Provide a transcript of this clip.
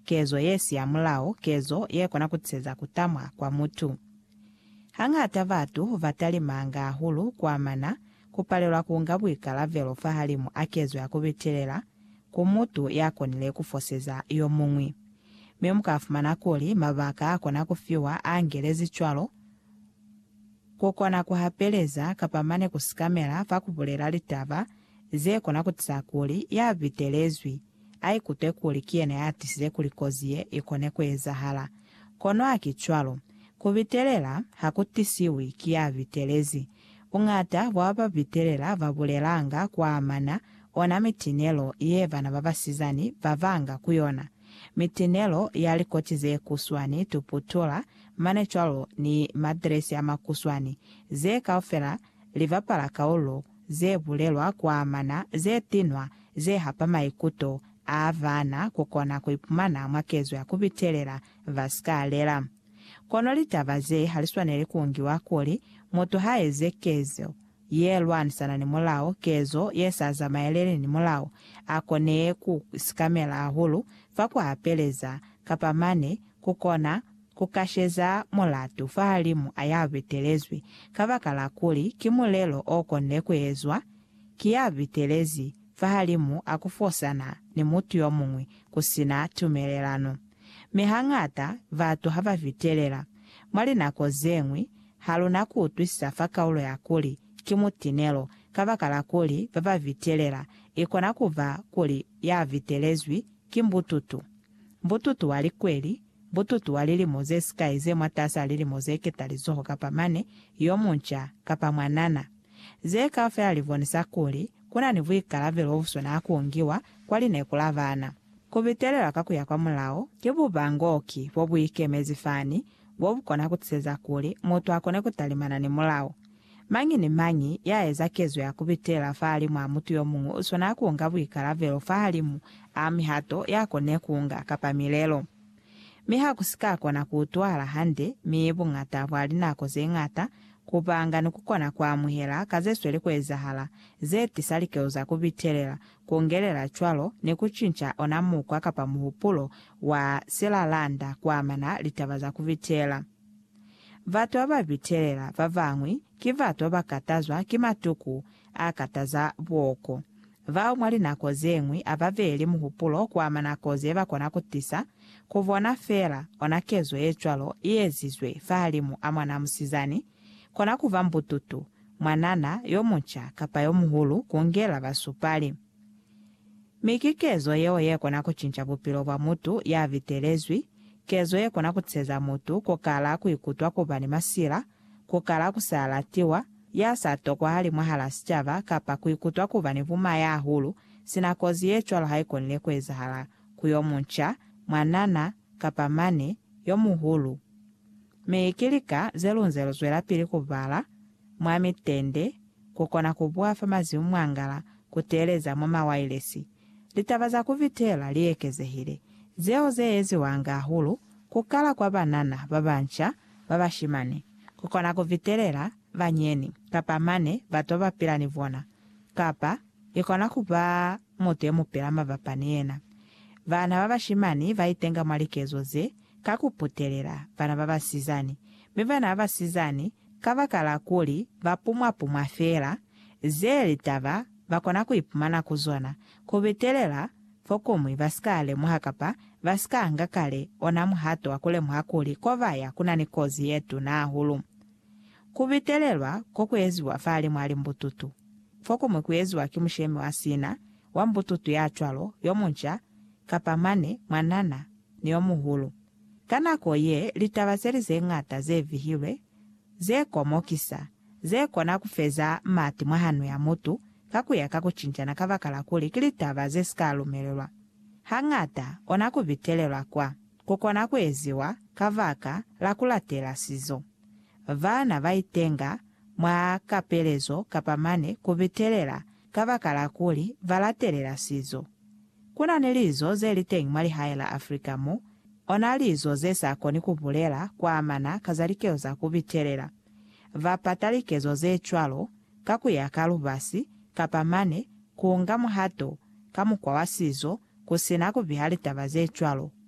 kezo ye si ya mulao, kezo ye kona ku tiseza ku tamwa kwa mutu. Hañata batu ba talimanga hahulu ku amana ku palelwa ku nga buikalabelo fahalimu a kezo ya ku bitelela ku mutu ya konile ku foseza yo muñwi. Mi mu ka fumana kuli mabaka a kona ku fiwa a angelezi cwalo, ku kona ku hapeleza kapa mane ku sikamela fa ku bulela litaba ze kona ku tisa kuli ya bitelezwi A ikute kuli ki yena ya tisize kuli kozi ye i kone ku ezahala. Kono haki cwalo. Ku bitelela ha ku tisiwi ki ya bitelezi. Buñata bwa ba ba bitelela ba bulelanga ku amana ona mitinelo ye bana ba basizani ba banga ku yona, mitinelo ya likoti ze kuswani, tuputula, mane cwalo ni madiresi a makuswani, ze kaufela li bapala kaulo ze bulelwa ku amana ze tinwa ze hapa maikuto a baana ku kona ku ipumana mwa kezo ya ku bitelela ba si ka lela. Kono litaba ze ha li swaneli ku ngiwa kuli mutu ha eze kezo ye lwanisana ni mulao, kezo ye sa zamaeleli ni mulao, a konee ku sikamela hahulu fa ku hapeleza, kapa mane ku kona Ku kasheza mulatu fahalimu a ya bitelezwi kabakala kuli ki mulelo o konde ku ezwa ki ya bitelezi fahalimu a ku fosana ni mutu yo muñwi ku si na tumelelano. Mi hañata batu ha ba bitelela. Mwa linako ze ñwi, ha lu na ku utwisisa fa kaulo ya kuli ki mutinelo kabakala kuli ba ba bitelela. I kona ku ba kuli ya bitelezwi ki mbututu, mbututu wa likweli, Bututu wa lilimo ze sikai ze mwataas'a lilimo ze ketalizoho kapa mane, yo munca, kapa mwanana. Ze kaufela li bonisa kuli ku na ni buikalavelo bu swanaa ku ngiwa kwa lineku la bana. Ku bitelelwa ka ku ya kwa mulao ki bubangoki bo bu ikemezi fani bo bu kona ku tiseza kuli mutu a kone ku talimana ni mulao. Mañi ni mañi ya eza kezo ya ku pitela fahalimu a mutu yo muñwi u swanela ku nga buikalabelo fahalimu a mihato ya kone ku nga kapa milelo. Mi ha ku si ka kona ku utwahala hande, mi buñata bwa linako ze ñata, ku panga ni ku kona ku amuhela ka ze sweli ku ezahala ze tisa likezo za ku pitelela, ku ngelela cwalo ni ku cinca ona mukwa kapa muhupulo wa silalanda ku amana litaba za ku pitela. Batu ba ba bitelela ba bañwi ki batu ba ba katazwa ki matuku a kataza booko, bao mwa linako ze ñwi a ba beeli muhupulo ku ama nako ze ba kona ku tisa ku bona feela. Ona kezo ye cwalo i ezizwe fahalimu a mwanaa musizani, kona ku ba mbututu, mwanana yo munca kapa yo muhulu, ku ngela basupali. Mi ki kezo yeo ye kona ku cinca bupilo bwa mutu ya bitelezwi, kezo ye kona ku tiheza mutu ku kala ku ikutwa ku ba ni masila, ku kala ku sa latiwa, ya sa tokwahali mwahal'a sicaba, kapa ku ikutwa ku ba ni buma ya hulu, sina kozi ye cwalo ha i konile ku ezahala ku yo munca, mwanana, kapa mane, yo muhulu. Mi ki lika ze lu nze lu zwelapili ku bala mwa mitende ku kona ku bwafa mazimu mwangala ku teeleza mwa mawailesi. Litaba za ku vitela li ekezehile, zeo ze eziwanga hahulu ku kala kwa banana ba banca ba bashimani ku kona ku vitelela banyeni kapa mane bato ba pila ni bona, kapa i kona ku ba mutu ye mu pila mabapa ni yena. Bana ba bashimani ba itenga mwa likezo ze ka ku putelela bana ba basizani, mi bana ba basizani Kabakala kuli ba pumwa-pumwa feela, ze litaba ba kona ku ipumana ku zona, ku bitelela fokuñwi ba si ka lemuha kapa ba si ka nga kale ona muhato wa ku lemuha kuli ko ba ya ku na ni kozi ye tuna hahulu. Ku bitelelwa ko ku eziwa fahalimw'a limbututu. Fokuñwi ku eziwa ki mushemi wa sina, wa mbututu ya cwalo, yo munca, kapa mane, mwanana, ni yo muhulu. Ka nako ye, litaba ze li ze ñata ze vihilwe, ze komokisa, ze kona ku feza mati mwa hano ya mutu ka ku ya ka ku cincana kabakala kuli ki litaba ze si ka lumelelwa, hañata kona ku bitelelwa kwa ku kona ku eziwa kabaka la ku latela sizo. Bana ba itenga mwa kapelezo kapa mane ku bitelela kabakala kuli ba latelela sizo. Ku na ni lizo ze li teñi mwa lihae la Afrika mo, ona lizo ze sa koni ku bulela kwa amana ka za likezo za ku bitelela. Ba pata likezo ze cwalo ka ku ya ka lubasi kapa mane ku nga muhato ka mukwa wa sizo ku si na ku biha litaba ze cwalo